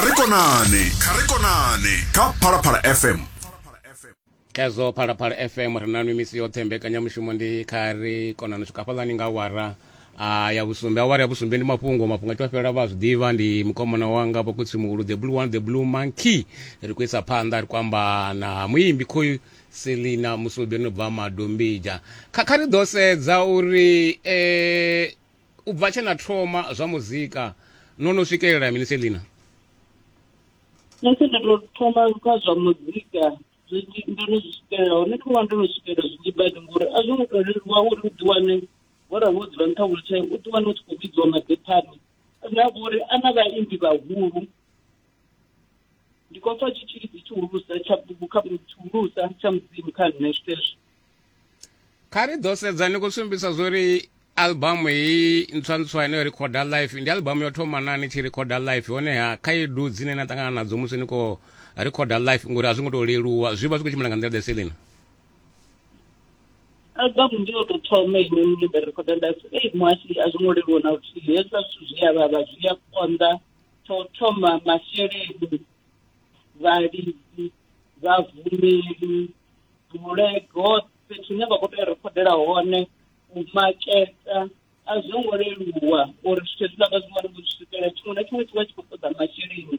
kha ri konane kha ri konane kha phalaphala fm khezwo phalaphala fm ri na mimisi yoṱhe mbekanyamushumo ndi kha ri konane u swika fhaḽani nga wara a ya vhusumbe awara ya vhusumbe ndi mafhungo mafhungo a tshi fhela vha zwi ḓivha ndi mukomana wanga vhakutsi muhulu the blue one the blue monkey ri khou isa phanḓa ri khou amba na muimbi khoyu selina musubi no bva madombija kha kha ri ḓo sedza uri um U bva tshe na thoma zwa muzika no no swikelela mini Selina? Nṋe tshe nda tou thoma kha zwa muzika zwi ndo no zwi swikelela hone kho vha ndo no swikelela zwinzhi badi ngori a zwo ngo tou leluwa uri u ḓiwane wo ra wo dzula nṱha wheelchair u ḓiwane u tshi khou vhidziwa maḓephani na vhori a na vhaimbi vhahulu ndi khou pfa tshitshilidzi tshihulusa tsha bugu kha tshihulusa tsha mudzimu kha nṋe zwitezwo kha ri ḓo sedza ni khou sumbisa zwo ri albamu heyi ntswantswa ine yo rikhoda life ndi albamu yo thoma na ni tshi rikhoda life honeha khaedu dzine na ṱangana nadzo musi ni khou rikhoda life ngori a zwi ngo tou leluwa zwi vha zwi khou tshimbila nga nḓila ḓe selina albamu ndi yo tou thoma ine nṋe nda rikhoda life ei muhasi a zwi ngo leluwa na luthihi hezwa zwithu zwi a vhavha zwi a konḓa tsho thoma masheleni vhalidzi vhahumeli bulego fhethu hune vha khou tea u rekhodela hone u maketa a zwo ngo leluwa uri zwithu hezwiḽa vha zwi wane vho zwi swikelela tshiṅwe na tshiṅwe tshi vha tshi khou ṱoḓa masheleni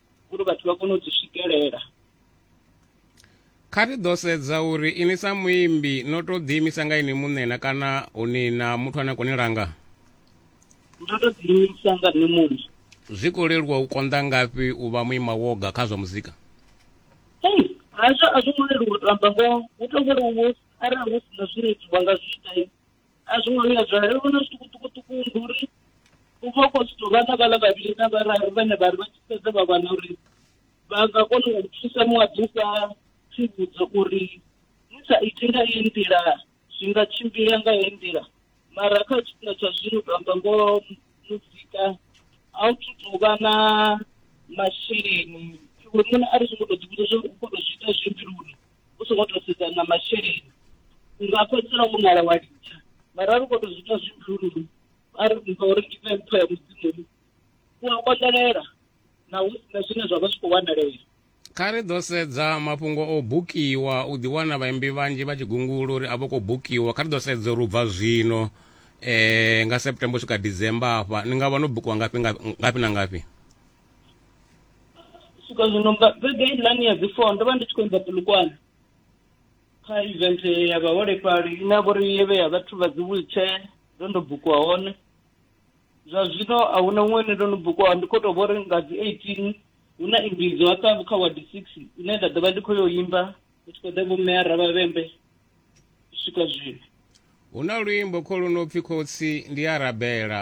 uri vhathu vha kone u dzi swikelela kha ri ḓo sedza uri ini sa muimbi no to ḓiimisa nga ini muṋe na kana uni na muthu ane a koni langa ndo to ḓiimisa nga nṋe muṋe zwi khou leluwa u konḓa ngafhi u vha muima woga kha zwa muzika ei hazwo a zwo ngo leluwa u to amba ngoho hu to vholowo arali hu si na zwine itiwa nga zwi ita a zwi ngo vhuya zwa ri vhona zwiṱukuṱukuṱuku ndi uri u vha u khou zwithu vha na vhala vhavhili na vhararu vhane vha ri vha tshi fhedza vha wana uri vha nga kona u thusa muṅwe a ḓisa tsivhudzo uri ni sa iti nga iyi nḓila zwi nga tshimbila nga heyi nḓila mara kha tshifhinga tsha zwino to amba ngoho muzika a u thu tou vha na masheleni iwe muṋe a ri zwi ngo tou ḓivhudza zwo u khou tou zwi ita zwi mbiluni u songo to sedza na masheleni nga fhedzisela u ngala wa litsha mara a ri khou tou zwi ita zwi bulululu a ri mpha uri ndi pfe mpho ya mudzimu u a konḓelela na hu sina zwine zwa vha zwi khou wanalea kha ri ḓo sedza mafhungo o bukiwa u ḓiwana vhaimbi vhanzhi vha tshi gungula uri a vho khou bukiwa kha ri ḓo sedza uri u bva zwino um nga september u swika december afha ni nga vha no bukiwa ngafhi ngafhi na ngafhi swika zwino nga vhege iḽani ya dzi four ndo vha ndi tshi khou imba pulukwane kha event ya vhaholefhali ine ya vhori yevhe ya vhathu vha dzi wheelchair ndo ndo bukiwa hone zwa zwino a huna huṅwe ine ndo no bukiwa ndi khou tou vhori nga dzi eighteen hu na imbidzo hafha kha wadi six ine nda ḓo vha ndi khou yo imba ndi tshi khou ḓa vho mme ara vhavhembe u swika zwino hu na luimbo kho lu no pfi khotsi ndi a rabela